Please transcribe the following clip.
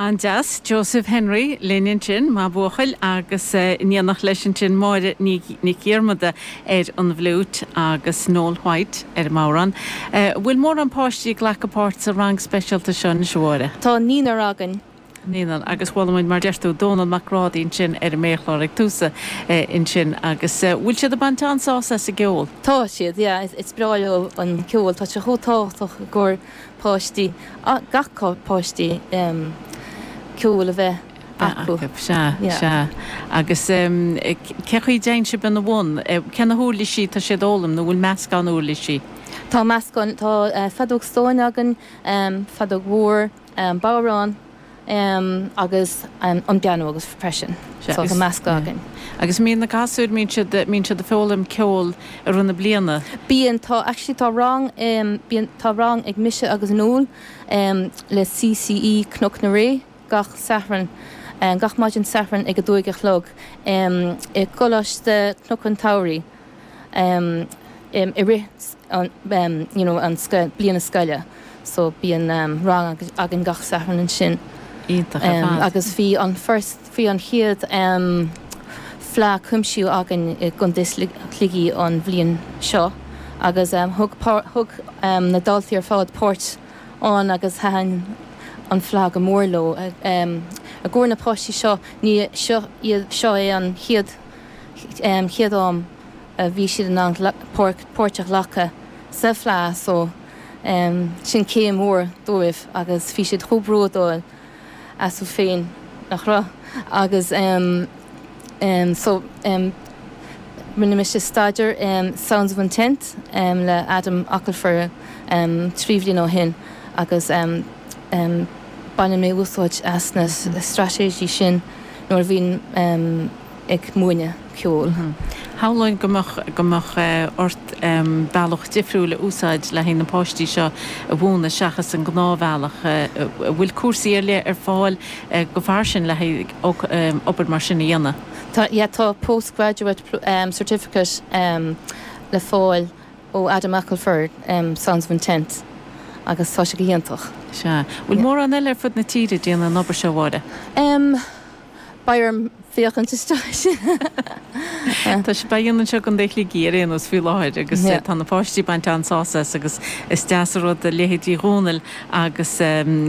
An-deas. Joseph Henry linn ansin, maith buachaill, agus in éineacht leis ansin Máire Nic Dhiarmada ar an bhfliúit agus Noel White ar an mbodhrán. An bhfuil mórán páistí ag glacadh páirt sa rang speisialta seo anois, a Mháire? Tá naonar againn. Naonar, agus chuala muid mar deir tú Dónall Mac Grádaigh ansin ar an méarchlár ag an tús ansin agus bhfuil siad ag baint an-sásamh as an gceol? Tá siad, yeah. Is breá leo an ceol. Tá sé chomh tábhachtach gur páistí, gach páiste ceol a bheith aige. Sea, sea. Agus cé chaoi a dtéann sibh ina bhun? Cé na huirlisí atá siad ag foghlaim nó bhfuil meascán uirlisí? Tá meascán, tá feadóg stáin againn, feadóg mhór, bodhrán, agus an pianó agus freisin tá an meascadh againn. Agus mbíonn na gasúir, mbíonn siad ag foghlaim ceol i rith na bliana? Bíonn, tá actually tá rang, bíonn, tá rang ag mise agus Noel le CCÉ Cnoc na Ré gach Satharn, gach maidin Satharn ag a dó dhéag a chlog i gColáiste Chnoc an tSamhraidh, i rith. you know, an scoil, bliana scoile, so bíonn rang againn gach Satharn ansin. Iontach, ar fad. Agus bhí an first, bhí an chéad fleadh cuimsitheach againn i gContae Shligigh an bhliain seo agus thug thug na daltaí ar fad páirt ann agus thaitin an fleadh go mór leo. I gcomhair na páistí seo, ní seo iad, seo é an chéad. chéad am a bhí siad in ann páirt a ghlacadh sa Fleadh so sin céim mhór dóibh agus bhí siad chomh bródúil astu féin nach raibh agus so rinne mise staidéar ar Sounds of Intent le Adam Ockelford trí bhliain ó shin agus baineann mé úsáid as na straitéisí sin. nuair a bhím ag múineadh ceoil. Shamhlóinn go mbeadh go mbeadh ort bealach difriúil a úsáid le haghaidh na páistí seo a mhúineadh seachas an gnáthbhealach. An bhfuil cúrsaí ar leith ar fáil go fairsing le haghaidh obair mar sin a dhéanamh? Tá, yeah, tá Postgraduate Certificate le fáil. ó Adam Ockelford, em, Sounds of Intent agus tá sé go híontach. Sea. Bhfuil mórán eile ar fud na tíre ag déanamh an obair seo, Mháire? Em, beidh orm féachaint isteach. Tá sé, beidh, déanann sibh é i gContae Shligigh ar aon nós faoi láthair agus eh, tá na páistí ag baint an-sásamh as agus is deas an rud a leithéidí Dhónaill agus em,